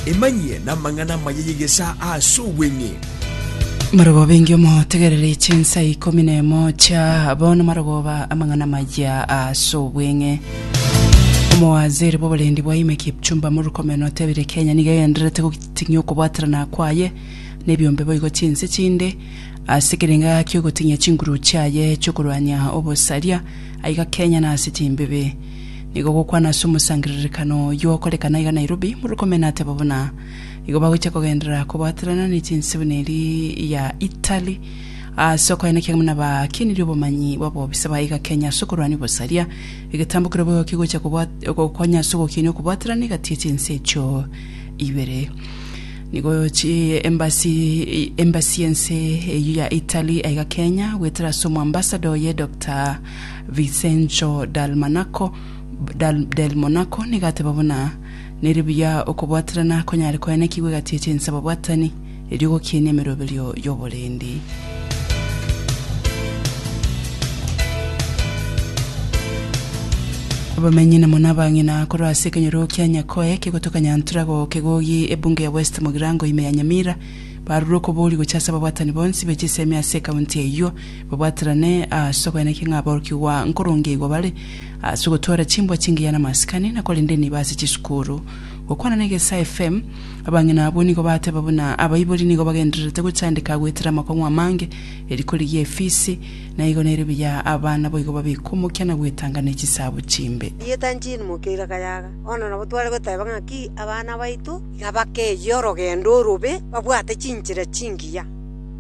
Emanyie namang'ana amaya y'egesaa ase obweng'e. Marogoba engiya omotegerere chinsa ikomi na emo chia bono marogoba amang'ana amaya ase obweng'e omowaziri bw'oborendi bwa ime kipchumba murkomen otebire kenya niga egendererete goting'ia okobwaterana kwaye na ebiombe boigo chinse chinde ase ekerenga kiogoting'ia chinguru chiaye chiokorwania obosaria aiga kenya na ase chimbibi Nigo gokwana ase omosangererekano oyio okorekana iga Nairobi, Murkomen ateba buna igo bagochia kogenderera kobwaterana ne chinsibuna eri ya Italy ase okoyana ekiagera buna bakenirie obomanyi bw'abobisa ba iga Kenya ase okorwania obosaria. Egetambo keria boigo kegochia kobwa- gokonya ase ogokina okobwaterana egati y'echinse echio ibere. Nigo chi embassy embassy y'ense eyio ya Italy aiga Kenya goetera ase omoambassador oye Doctor Vicenco dal Manaco, dal, del Monaco, nigo ateba buna, Nere buya okobwaterana konyare koenekigwa egati ya chinse ababwatani, erio gokienia emeroberio y'oborendi. Abamenyi na muna abang'ina korwa ase ekenyoro kia Nyakoe kegotoka Nyantura go Kegogi ebunge ya West Mogirango ime ya Nyamira, barure okobori gocha ase ababwatani bonsi be chisemi ase ekaunti eyio babwaterane ase okoenekia ng'a aborokigwa nkorongeigwa bare ase ogotwara chimbwa chingiya namasikani, na korende niba ase chisukuru. Gokwana na Egesae FM, abang'ina abwo nigo bateba buna abaibori nigo bagendererete gochandeka goetera amakong'u amange, eriko rigiya efisi, na igo nerio buya abana boigo babekwa omokia na goetanga ne chisaabo chimbe. Rieta Jean Mokeira Kayaga, Bono nabo tware goteba ng'aki abana baito nabakeyie orogendo orobe babwate chinchera chingiya.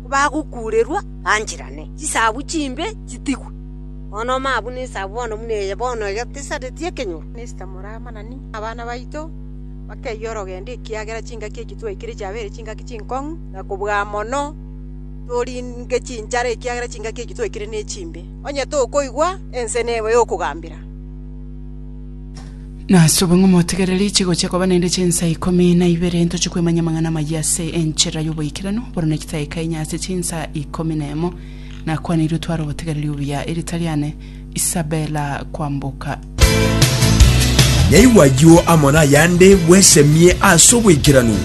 kobagokuurerwa bancherane, chisagu chimbe chitigwe. Bono mabu nesagu bono buna eye bono egetesareti ekenyoro, nesita moramanani nabana baito bakeyia orogendo, ekiagera chingaki eki twaikire chiabeire chingaki chinkong'u, na kobua mono toringe chinchara ekiagera chingaki eki twaikire nechimbe. Onye tokoigwa, ense neba eyokogambera. Nasube ng'a omotegereri chigochia koba naende chinsa ikomi na ibere ntoche kwemanya amang'ana amayia ase enchera y'oboikeranu bono na egitaika enye ase chinsa ikomi na emo. Nakwaneirie otware obotegereri obuya erita riane Isabella Kwamboka. Yaigwa ayio amo nayande bwesemie ase oboikeranu.